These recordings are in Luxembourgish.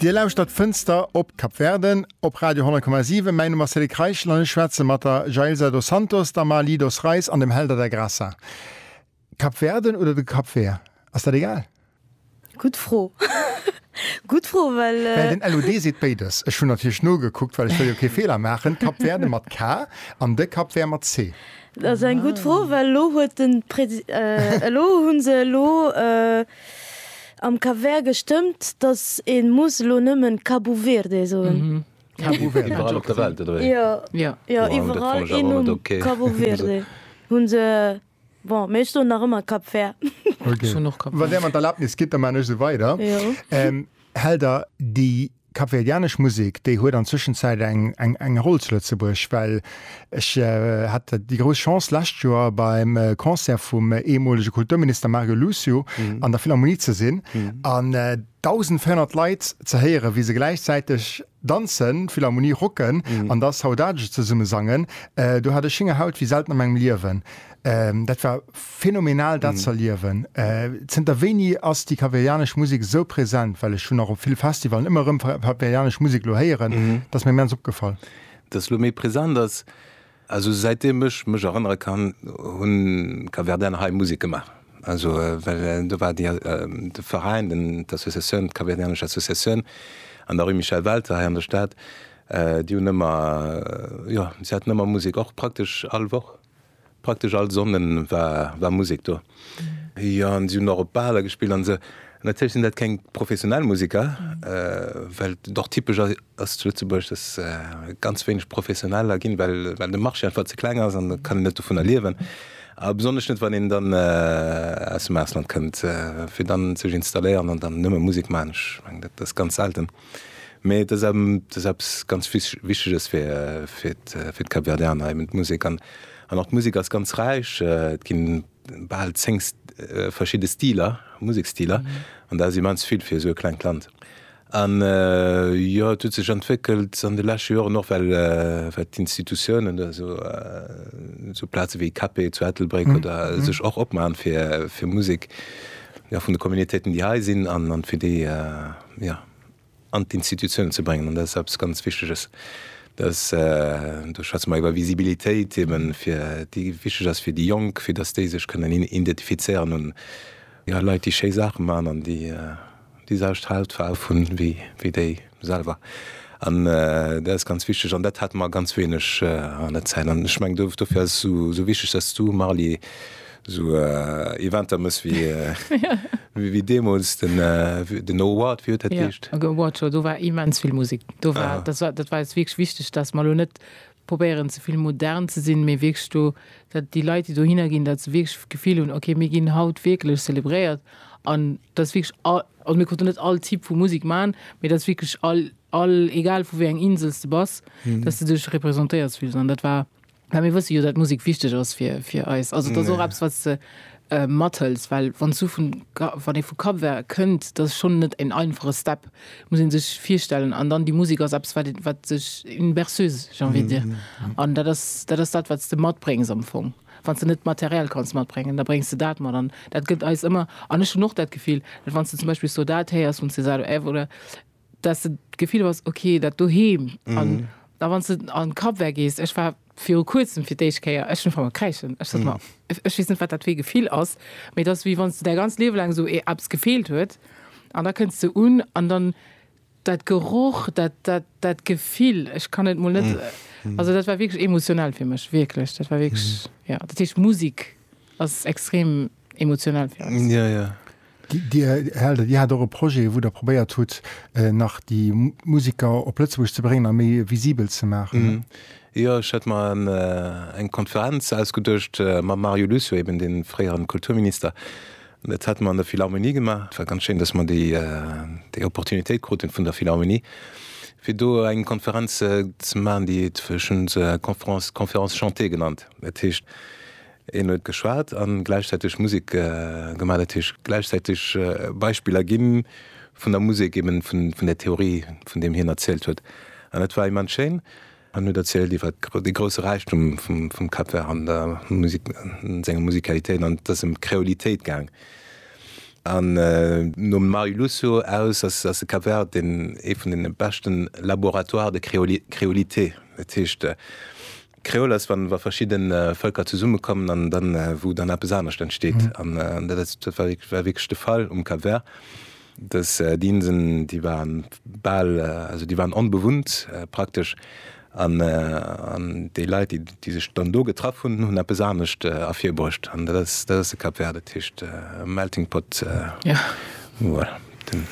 Dir lauschtert Fënster op Kap Verde op Radio 10,7. Mäi Numm ass Cédric Reichel an ech schwätze mat der Jailza dos Santos, der Marly dos Reis an dem Helder da Graça. Kap Verden oder de Kap Ver? Ass dat egal? Gutt Fro. Gutt Fro, well. Well den LOD seet béides. Ech hunn natierlech nogekuckt, well ech wëll jo kee Feeler maachen. Kap Verde mat K an de Kap Ver mat C. Dat ass eng gutt Fro, well elo huet den Presi-, elo hunn se elo, Am Cap Vert gestëmmt, dass een muss elo nëmmen Cabo Verde soen. Mhm. Cabo Verde. Iwwerall op der Welt oder wéi? Jo. Jo. Jo, iwwerall een Numm. Okay. Cabo Verde hunn se. Bon, mee ech soen nach ëmmer Cap Vert. Okay. Wann Där mer d'Erlaabnis gitt, da maachen ech esou weider. Jo. Hell der déi Kapverdianesch Musek, déi huet an Zwëschenzäit eng eng Roll zu Lëtzebuerg, well ech hat déi grouss Chance d'lescht Joer beim Concert vum eemolege Kulturminister Mario Lucio an der Philharmonie ze sinn an 1.400 Leit ze héieren, wéi se gläichzäiteg danzen, d'Philharmonie rocken an da Saudade zesummesangen. Do hat ech Schéngerhaut wéi selten a mengem Liewen. Dat war phänomenal dat ze erliewen. Zënter wéini ass déi kapverdianesch Musek esou present? Well ech hunn och op ville Festivalen ëmmer erëm kapverdianesch Musek elo héieren. Dat ass mir immens opgefall. Datt se elo méi present ass? Also säit deem ech mech erënnere kann, hu Kapverdianer hei Musek gemaach. Also well do war déi, de Veräin, den, d'Associatioun, d'Kapverdianesch Associatioun an der Rue Michel Welter hei an der Stad, déi hunn ëmmer, jo, se haten ëmmer Musek, och praktesch all Woch. Praktesch all Sonnden war Musek do. Jo, an si hunn och op Baler gespillt an esou. Natierlech sinn dat keng professionell Museker, well et och typesch ass zu Lëtzebuerg, dass ganz wéineg Professioneller ginn, well de Marché einfach ze kleng ass an et kann een net dovunner liewen. A besonnesch net, wann een dann aus dem Ausland kënnt, fir dann sech installéieren an dann nëmme Musek maachen. Ech mengen, dat ass ganz selten. Mee et ass eppes ganz Wichteges fir d'Kapverdianer, eben d'Musek. An och d'Musek ass ganz räich. Et ginn bal zéng verschidde Stiler, Museksstiler, an dat ass immens vill fir esou e klengt Land. An jo, et huet sech entwéckelt an de leschte Joren och, well d'Institutiounen, also sou Plaze wéi KP zu Ettelbréck oder, sech och opmachen fir Musek vun de Communautéiten, déi hei sinn, an fir déi ja, an d'Institutionen ze bréngen. An dat ass eppes ganz Wichteges. Dass, do schwätze mer iwwer Visibilitéit eben, fir déi wichteg ass fir déi Jonk, fir dass déi sech kënnen identifizéieren un, jo, Leit, déi schéi Saache maachen an déi déi selwecht Hautfaarf hunn wéi déi selwer. An dat ass ganz wichteg. An dat hate mer ganz wéineg an der Zäit. An ech mengen, dofir ass et esou wichteg, dass du, Marly, Sou Eventer mëss wéi deemools den Award, wéi huet dat geheescht? Jo, Award Show, do war immens vill Musek. Do war, dat war, dat war eis wierklech wichteg, dass mer elo net probéieren ze vill modern ze sinn, mee wierklech do, dat déi Leit déi dohinner ginn, dat se wierklech d'Gefill hunn, ok mir ginn haut wierklech zelebréiert an dass wierklech all, also mir konnten net all Typ vu Musek man, mee dass wierklech all, all, egal vu wéi eng Insel s de bass, dass de dech représentéiert fills an dat war, Mä mir wësse jo, datt Musek wichteg ass fir eis. Also et ass och eppes, wat s de mathëls. Well wann s du vun, wann ee vu Cap-Vert kënnt, dat ass schonn net en einfache Step, muss ee sech virstellen. An dann déi Musek ass eppes, wat, wat sech, une berceuse, j'ai envie de dire. An dat ass, dat ass dat, wat s de matbréngs am Fong. Wann s de net d'Material kanns matbréngen, da bréngs de dat mat. An dat gëtt eis ëmmer, an ech hunn och dat Gefill, datt wann s de zum Beispill Saudade héiers vum Cesare Évora, dass de d'Gefill hues, ok, dat doheem an da wann s de an d'Kapvär gees, ech war viru kuerzem fir d'éischt Kéier, ech hunn ufank mat kräischen, ech sot, ma ech weess net, wat dat fir ee Gefill ass, mee et ass wéi wann s de däi ganz Liewe laang esou eppes gefeelt huet an da kënns de un an dann dat Geroch, dat, dat, dat Gefill, ech kann et mol net, also dat war wierklech emotionell fir mech, wierklech, dat war wierklech, jo. Dat heescht Musek ass extrem. emotional fir eis. Ja, ja. Dir, Här Elder, Dir hat och e Projet, wou Der probéiert hutt, nach déi Musiker op Lëtzebuerg ze bréngen a méi visibel ze maachen, ne? Jo, ech hat mer eng Konferenz ausgeduecht mam Mario Lucio, eben dee fréieren Kulturminister. Dat hate mer an der Philharmonie gemaach. Et war ganz schéin, dass mer déi Opportunitéit kruten vun der Philharmonie, fir do eng Konferenz ze maachen, déi, ech hunn se Conférence chantée genannt. Dat heescht, Een huet geschwat an gläichzäiteg Musek gemaat. Dat heescht gläichzäiteg Beispiller ginn vun der Musek, eben vun der Theorie vun deem hien erzielt huet. An dat war immens schéin. An huet erzielt iwwert dee grousse Räichtum vum Cap Vert an der Musek, senger Musikalitéit. An et ass ëm d'Kreolitéit gaang. An nom Mario Lucio aus ass ass de Cap Vert een ee vun deene beschten laboratoires de créolité. Dat heescht, Kreol ass, wann wa verschidde Vëlker zesummekommen an dann, wou dann eppes anescht entsteet. An dat ass, dat war wierk-, war wierklech de Fall um Cap Vert, dass déi Inseln, déi waren bal, also déi waren onbewunnt praktesch, an, an déi Leit, déi, déi sech dann do getraff hunn, hunn eppes anescht ervirbruecht. An dat ass, dat ass de Cap Vert, dat heescht melting pot, voilà, den,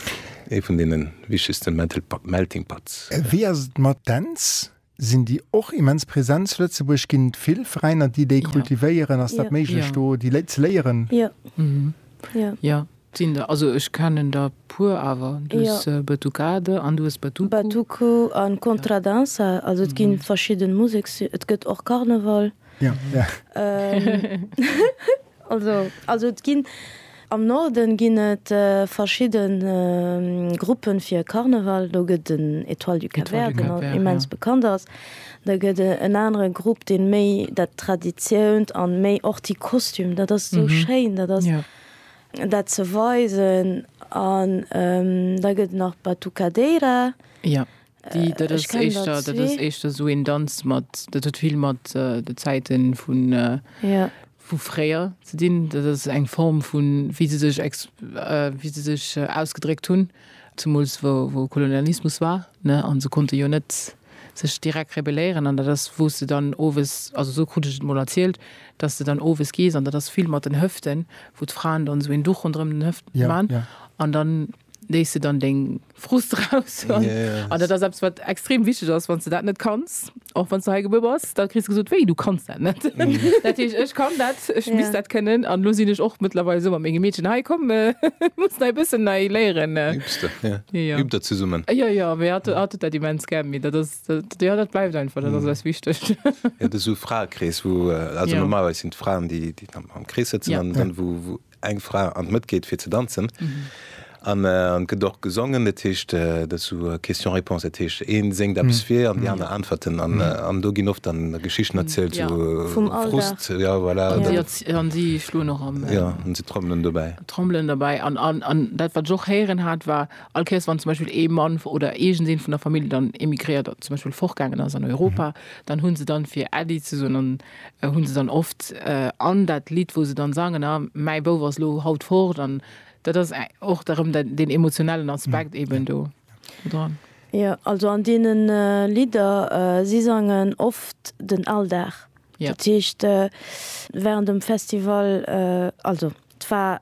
ee vun deene wichtegste melting pots. Wéi ass et mat Dänz? Sinn déi och immens präsent zu Lëtzebuerg? Ginn et vill Veräiner, déi déi kultivéieren? Ass dat méiglech, do déi Léit ze léieren? Jo. Sinn der. Also ech kennen der e puer. Awer du hues Batucade an du hues Batuku. Batuku a Contradança. Also et gi verschidde Museks. Et gëtt och Karneval. Ja, ja. Ähm, also, also et ginn am Norden ginn et äh, verschidden äh, Gruppen fir Karneval. Do gëtt den Etoile du Cap Vert, den Cap immens ja. bekannt ass. Da gëtt e, en anere Grupp, den méi dat Traditiount an méi och die Kostüm, dat ass so mhm. schéin, dat ass ja. dat ze weisen an ähm, da gëtt nach Batucadeira. Ja. Déi, dat ass éischter, dat ass éischter esou een Danz mat, dat huet vill mat de Zäiten vun, vu fréier ze dinn. Dat ass eng Form vu wéi se sech ex, wéi se sech ausgedréckt hunn, zemools wou, wou Kolonialismus war, ne, a se konnte jo net sech direkt rebelléieren. An dat ass, wou s de dann owes, also esou krut ech et emol erzielt, datt s de dann owes gees, an dat ass vill mat den Hëften, wou d'Fraen dann esou een Duch ronderëm den Hëften man an dann. léiss de dann deng Frust raus. Ja, ja, ja. An dat ass eppes, wat extrem wichteg ass, wann s de dat net kanns, och wann s de hei gebuer bass, da kriss de gesot, Wéi, du kanns dat net? Dat heescht, ech kann dat, ech misst dat kënnen. An elo sinn ech och mëttlerweil esou mat menge Meedchen, Hei, komm, mir mussen hei e bëssen nei léieren. Übs de, ja. Jo, jo. Übt der zesummen. Jo, jo, mee hatt huet dat immens gär. Mee dat ass, jo, dat bleift einfach, dat ass eis wichteg. Jo, et ass esou e Fraekrees, wou, also normalerweis sinn et d'Fraen, déi am Krees sëtzen an dann, wou eng Fra an d'Mëtt geet fir ze danzen. An et gëtt och gesongen, dat heescht dat ass esou Question-Réponse, dat heescht ee séngt eppes vir an déi aner äntwerten. An do ginn oft dann Geschichten erzielt, esou Frust, jo voilà. An si schloen och am. Jo, an si trommelen dobäi. Trommelen dobäi. An dat wat ech och héieren hat war, all Kéiers wann zum Beispill ee Mann oder iergend een vun der Famill dann emigréiert, zum Beispill fortgaangen ass an Europa, dann hunn se dann fir Äddi ze soen an. hunn se dann oft an dat Lidd, wou se dann sangen, a mäi Bouf ass lo haut fort, an dat ass och da rëm deen emotionellen Aspekt eben do dran. Jo, also an deene Lidder, si sangen oft den Alldag, dat heescht wärend dem Festival, also et war,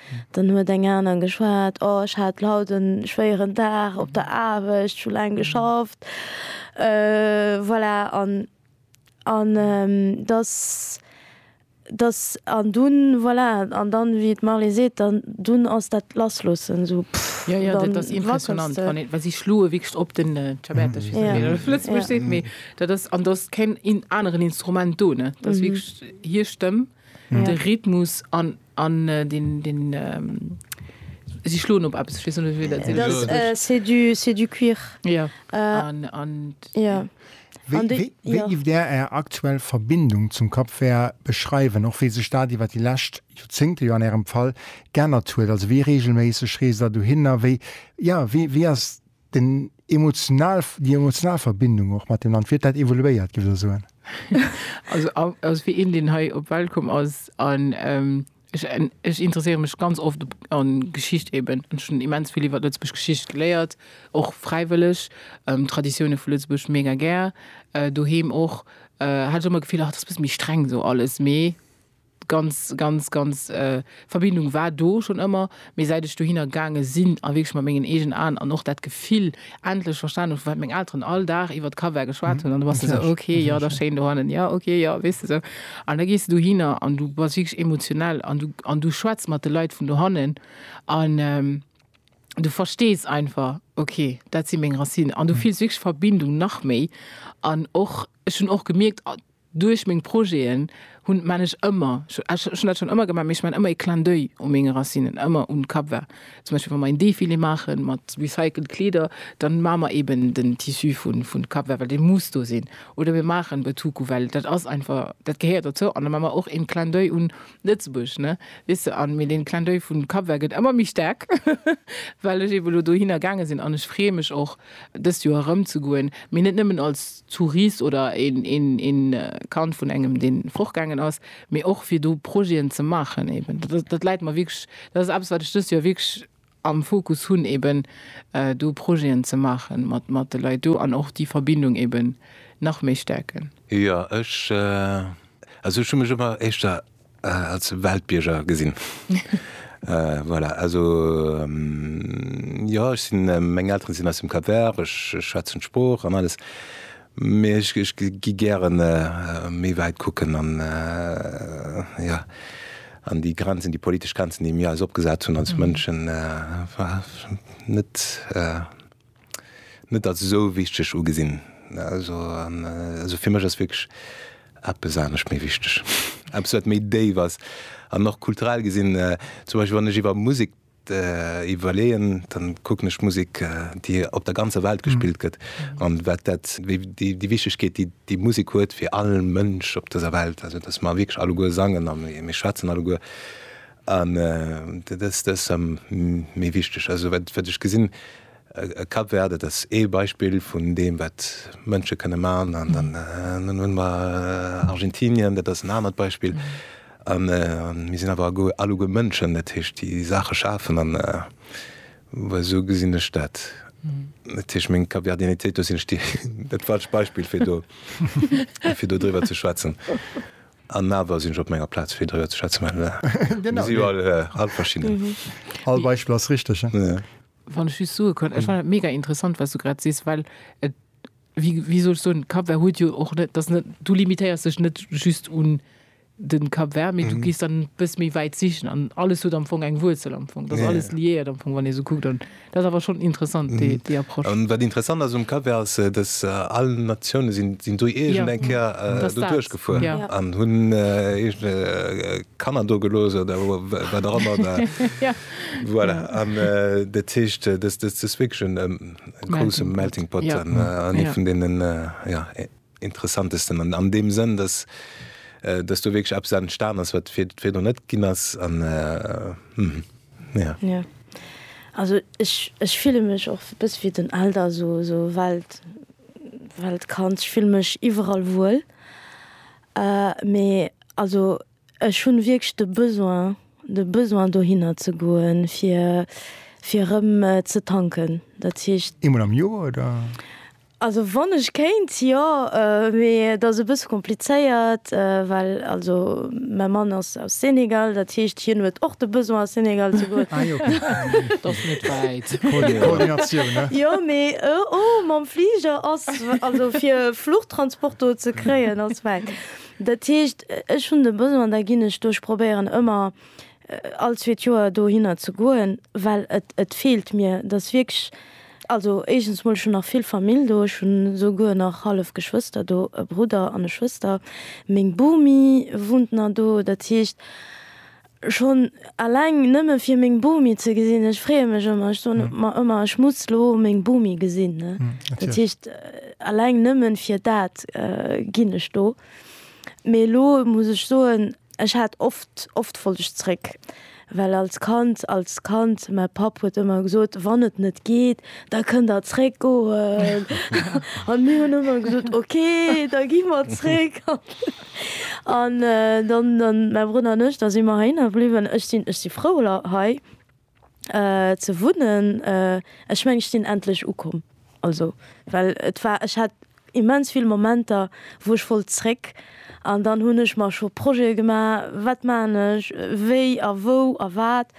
Dann huet eng aner geschwat, Oh, ech hat haut e schwéieren Dag op der Aarbecht, ech hu laang geschafft. Voilà, an, an dass, dass, an dunn, voilà, an dann, wéi d'Marley seet, dann, dunn ass dat Lassloossen esou, pff. Jo, jo, dat ass impressionant, wann ee, well si schloe wierklech op den Ciabatta, ech weess net, wéi een dat op Lëtzebuergesch seet, mee dat ass, an do ass keen aneren Instrument do, ne, dat ass wierklech hir Stëmm. Mm. De Rhythmus an, an äh, den, den ähm, si schloen op eppes, ech net wéi dat se das, äh, c'est du, c'est du cuir. Ja. Äh, an, an, ja. Wéi, de, wéi, wéi ja. gift der är aktuell Verbindung zum Cap Vert beschreiwen, och wéi sech dat iwwer déi lescht Joerzéngte jo an ärem Fall geännert huet? Also wéi reegelméisseg reest der dohinner? Wéi, ja, wéi, wéi ass Den emotional, déi emotional Verbindung och mat dem Land, wéi huet dat evoluéiert, gëff der soen? Also ass wéi een, deen hei op d'Welt komm ass an ech, ech interesséiere mech ganz oft a Geschicht eben. Ech hunn immens vill iwwer Lëtzebuerg Geschicht geléiert, och fräiwëlleg. Traditioune vu Lëtzebuerg mega gär, doheem och. Hat ech ëmmer d'Gefill, ach dat ass e bësse méi streng esou alles, mee ganz, ganz, ganz Verbindung war do schonn ëmmer, mee säit ech dohinner gaange sinn a wierklech mat mengen eegen Aen an och dat Gefill endlech verstanen hu, wat meng Elteren all Dag iwwert Kaviar geschwat hunn, an du bass esou, ok, jo, dat ass schéin dohannen, jo, ok, jo, weess de esou. An da gees de dohinner an du bass wierklech emotionell an du, an du schwätz mat de Leit vun dohannen an du verstees einfach, ok, dat si meng Racinen an du fills wierklech Verbindung nach méi an och, ech hunn och gemierkt, Duerch meng Projeten hunn, man ech ëmmer, ech hunn dat schonn ëmmer gemaach, mee ech man ëmmer ee Clin d'oeil u menge Racinen, ëmmer un Cap-Vert. Zum Beispill wa mer een Defilé maache mat recycelt Kleeder, dann maache mer eben den Tissu vun Cap-Vert, well dee muss do sinn. Oder mir maachen Betuku, well dat ass einfach, dat gehéiert dozou. An da maache mer och een Clin d'oeil un Lëtzebuerg, ne, weess de. An mee deen Clin d'oeil vun Cap-Vert gëtt ëmmer méi staark, well ech eben elo dohinner gaange sinn. An ech freeë mech och dëst Joer erëm ze goen, mee net nëmmen als. Zuris oder een Kand vun engem deen fortgaangen ass, mee och fir do Projeten ze maachen eben. Dat läit mer wierklech, dat ass eppes wat ech dëst Joer wierklech am Fokus hunn eben do Projeten ze maachen mat de Leit do an och déi Verbindung eben nach méi stäerken. Jo ech, also ech hu mech ëmmer éischter Äh, als Weltbierger gesinn. Äh, voilà. Also, ähm, jo, ech sinn, äh, meng Elteren sinn aus dem Cap Vert, ech, ech schwätzen d'Sprooch an alles. Mee ech, ech gi gären, äh, méi wäit kucken an, äh, jo, an déi Grenzen, déi politesch Grenzen, déi mir eis opgesat hunn als Mënschen, äh, war net, äh, net als esou wichteg ugesinn. Also fir mech ass wierklech eppes anescht méi wichteg, eppes wat méi déif ass an och kulturell gesinn. Zum Beispill wann ech iwwer Musek iwwerleeën, da kucken ech d'Musek, déi op der ganzer Welt gespillt gëtt an wat dat, déi Wichtegkeet, déi déi Musek huet fir all Mënsch op dëser Welt. Also datt mer wierklech alleguer sangen a mir schwätzen alleguer An dat ass ëm méi wichteg. Also wat ech gesinn a Cap Vert, dat ass ee Beispill vun deem, wat Mënsche kënne man. An dann hunn mer Argentinien, dat ass en anert Beispill. A mir sinn awer alleguer Mënschen, dat heescht, déi Saache schafen. An esou gesinn ech dat. Dat heescht, meng Capverdianitéit, do sinn ech dat falscht Beispill, fir do driwwer ze schwätzen. An awer sinn ech op menger Plaz, fir driwwer ze schwätzen. Mir si jo all, all verschidden. All Beispill ass richteg. Wann ech just soe kann, ech fannen dat mega interessant, wat s du grad sees, well et, wéi, wéi soll ech soen, Cap Vert huet jo och net, dat ass net, du limitéiers dech net just un de Cap Vert, mee du gees dann e bësse méi wäit sichen an alles huet am Fong eng Wuerzel am Fong. Dat ass alles liéiert am Fong, wann ee sou kuckt. Dat ass awer schonn interessant, déi Approche. An wat interessant ass um Cover ass, dass all Natioune sinn do iergend eng Kéier doduerch gefuer an hunn eegene Kanner do gelooss oder wat och ëmmer. Voilà, an dat heescht, dass dës wierklech e grousse Melting Pot an ee vun deenen, interessantesten an deem Sënn, dass dass do wierklech eppes entstan ass, wat vir virdu net ginn ass an jo. Also ech ech fille mech och e bësse wéi den Elder, esou esou Welt Weltkand. Ech fille mech iwwerall wuel, mee also ech hunn wierklech de Besoin de Besoin dohinner ze goen, fir fir erëm ze tanken, dat heescht. Eemol am Joer oder? Also wann ech kéint jo, mee et ass e bësse komplizéiert, well also mäi Mann ass aus Senegal, dat heescht hien huet och de Besoin a Senegal ze goen. Jo, mee o mam Fliger ass also fir Fluchtransport do ze kréien ass wäit. Dat heescht ech hunn de Besoin, da ginn ech do, ech probéieren ëmmer all zweet Joer dohinner ze goen, well et et feelt mir, et ass wierklech Also éischens mol, ech hunn nach vill Famill do, ech hunn esouguer nach hallef Geschwëster do, e Brudder an e Schwëster, meng Bomi wunnt nach do. Dat heescht, schonn eleng nëmme fir meng Bomi ze gesinn, ech freeë mech ëmmer, ech soen mer ëmmer, ech muss lo meng Bomi gesinn, ne. Dat heescht, eleng nëmme fir dat ginn ech do. Mee elo muss ech soen. Ech hat oft, oft wollt ech zréck, well als Kand, als Kand, mäi Papp huet ëmmer gesot, wann et net geet, da kënnt der zréck goen. An mir hunn ëmmer gesot, ok, da gi mer zréck. An dann, dann mäi Brudder an ech, da si mer heihinner bliwwen. Ech sinn, ech si frou hei. ze wunnen. Ech mengen ech sinn endlech ukomm, also well et war, ech hat immens vill Momenter wou ech wollt zréck an dann hunn ech mer scho Projete gemaach, wat maachen ech, wéi a wou a wat,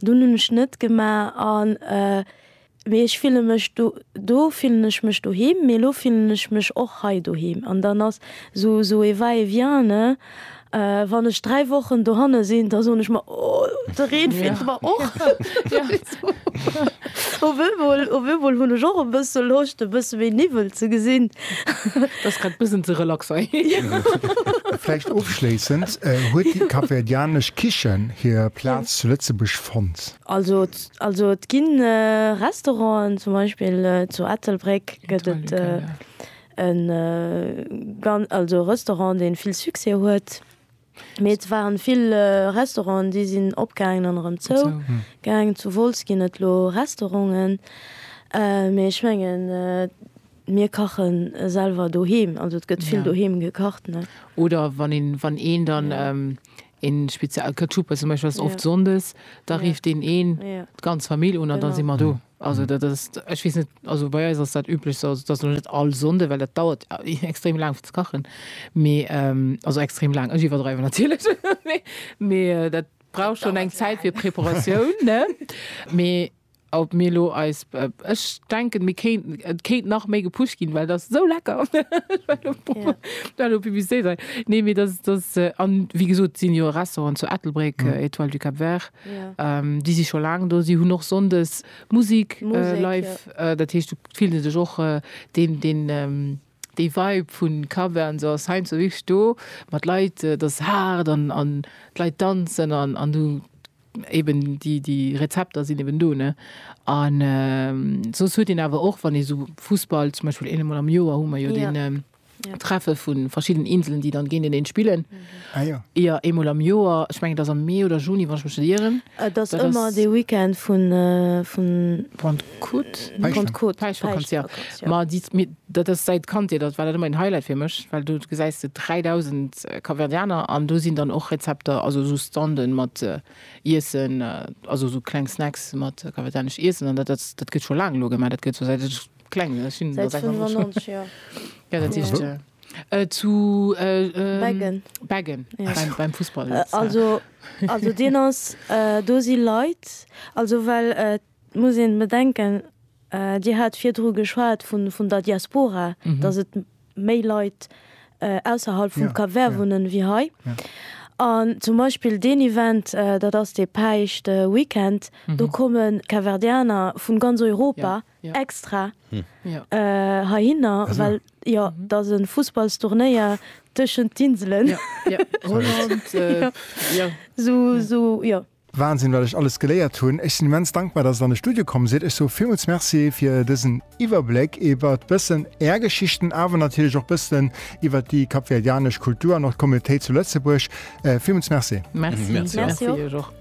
dunn hunn ech net gemaach an Mee ech fillen mech do, do fillen ech mech doheem, mee elo fillen ech mech och hei doheem. An dann ass esou esou e va et vient, ne? Wann ech dräi Wochen dohanne sinn, da soen ech mer, oh, de Reen feelt mer och. Op eemol, op eemol hunn ech och e bësse Loscht, e bësse méi Niwwel ze gesinn. Dat ass grad e bëssen ze relax hei. Vläicht ofschléissend, Huet déi kapverdianesch Kichen hir Plaz zu Lëtzebuerg fonnt? Also also et ginn Restauranten, zum Beispill zu Ettelbréck gëtt et e gan also Restaurant dee vill Succès huet. Mee et waren vill Restauranten déi sinn opgaangen an erëm zou gaangen. Zu Wolz ginn et elo Restauranten. Mee ech mengen mir kache selwer doheem, also et gëtt vill doheem gekacht ne. Oder wann een wann een dann Een speziell Ketchupe zum Beispiel ass oft Sonndes, da rifft deen een d'ganz Famill un an da si mer do. Also dat ass, ech weess net, also bei eis ass dat üblech sou, also et ass elo net all Sonnde, well dat dauert extrem laang fir ze kachen, mee also extrem laang, ech iwwerdreiwen natierlech, mee dat brauch schonn eng Zäit fir Preparatioun, ne? Mee Ob mir lo eis, ech denken mir kéinten, et kéint nach méi gepusht ginn, well et ass esou lecker, ech war elo proppe war elo Publicité dran, nee mee dass dass an wéi gesot sinn jo e Restaurant zu Ettelbréck, Etoile du Cap Vert, déi si scho laang do, si hunn och Sonndes Musik live, dat heescht do fillen se sech och deen deen. Déi Vibe vu Cover an esou ass heiansdo wierklech do, mat Leit, et ass haart an d'Leit danzen an du eben déi Rezepter sinn eben do ne. An soss huet een awer och wann ee sou Fussball zum Beispill, eemol am Joer hu mer jo dee Treffe vu verschidden Inselen déi dann géinteneen spillen, jo eemol am Joer, ech mengen et ass am Mee oder Juni wann ech mech net ieren. Et ass ëmmer dee Weekend vun. Kut, Penchant, Penchant, ja. Ma déi, mir, dat ass säit Kandheet, dat war dat ëmmer een Highlight fir mech, well do gesäis de 3.000 Kapverdianer an do sinn dann och Rezepter, also esou Standen mat Iessen, also esou kleng Snacks mat kapverdianesch Iessen an dat, dat, dat gëtt scho laang elo gemaach, dat gëtt scho säit ech kleng sinn, ech sinn elo 96 Joer. Ja, dat heescht zu Beggen, Beggen beim, beim Fussball. Also, also deen ass, do si Leit, also well et. Et muss een bedenken, Dir hat virdru geschwat vun der Diaspora, dass et méi Leit ausserhalb vum Cap Vert wunnen ewéi hei. An zum Beispill deen Event, dat ass dee Päischt Weekend, do komme Capverdianer vu ganz Europa extra heihinner, well jo et ass e Fussballsturnéier tëschent d'Inselen. Holland, jo. Wahnsinn wat ech alles geléiert hunn. Ech sinn immens dankbar dass et an de Studio komm sidd. Ech soe villmools Merci fir dësen Iwwerbléck iwwert bëssen är Geschichten awer natierlech och bëssen iwwert déi kapverdianesch Kultur an och d'Communautéit zu Lëtzebuerg. Villmools Merci. Merci iech och.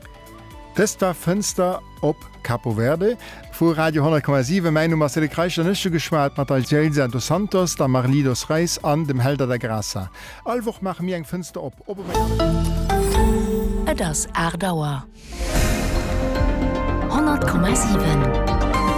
Dëst war Fënster op Capo Verde vu Radio 10,7. Mäin Numm ass Cédric Reichel an ech hu geschwat mat Alcélsa dos Santos, der Marlie dos Reis an dem Hélder da Graça. All Woch maache mir eng Fënster op, ob op enger Plage. Et ass 8 Auer. 100,7.